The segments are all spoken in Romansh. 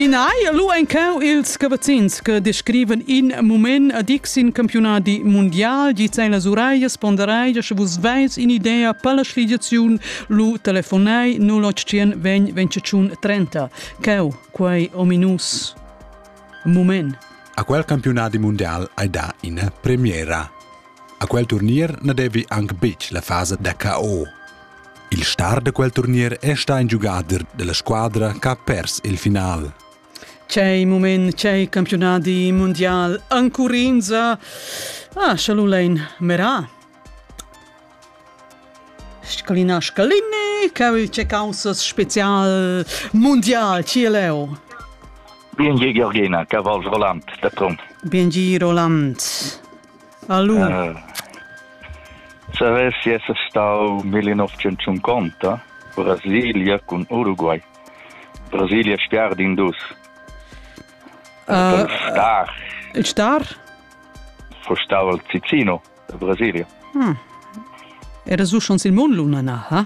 Ina hai lu encau ils cavazzins che descriven in mument a dic sin campionadi mundial, gi sei las uraias ponderai, sche vus veis in'idea per la sligiaziun, lu telefonai 081 20 25 30. Ceu, quei ominus mument. A quel campionadi mundial hai da ina premiera. A quel turnier na devi anc betg la fasa da KO. Il star da quel turnier è stà in giugader della squadra che ha pers il final. C'è il momento, c'è il campionati mondiale, Ancurinza. Ah, Schalulein Merà. Scalina Scalini, che c'è causa special mondial, ci è Leo? Bien Georgina, cavalls volant, da Trum. Bien Roland. Allura. Uh, Savessi esser stau 1950 Brasilia cun Uruguay. Brasilia star din dus. Uh, star. Il star? Fostau al Cicino, Brasilia. Hmm. Era su schons il mon luna na, ha?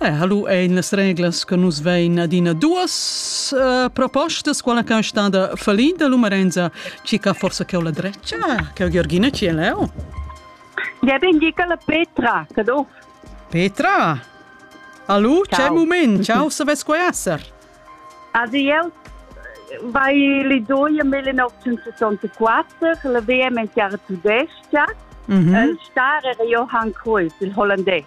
Eh, hallo ein las reglas che nus vein adina duas uh, propostas, quella che è stata fallinda l'umarenza, ci che forse che ho la dreccia, che ho Georgina ci è leo. Ja bin Gicola Petra, che do? Petra? Hallo, c'è un momento, ciao, se ves qua esser. Also io vai le doie 1964, la VM in Chiara Tudesca, mm -hmm. il star era Johann Cruyff, il olandese.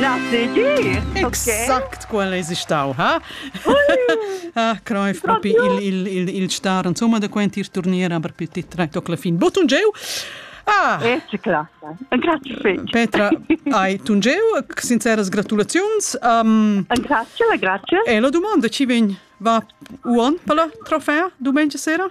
Na tgi? Exact quel es stau, ha? ah, creif propi il, il, il, il star, insomma, da quent ir turnier, aber per ti trai toc la fin. Botun geu! Ah! E eh, classa. Grazie fetg. Petra, hai tungeu, sinceras gratulaziuns. Um, grazie, grazie. E la domanda ci vegn, va uon per la trofea domenica sera?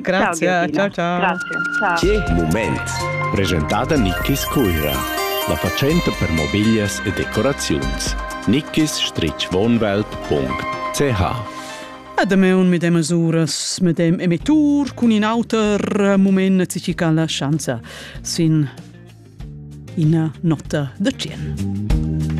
Grazie, ciao ciao. Grazie, ciao. Che moment! Presentata Nickis Cuira, la facente per mobiglias e decoraziuns. nickis-wohnwelt.ch Adam è un medem uras, medem emettur cun in auter moment ci ca la schanza sin ina nota da 100.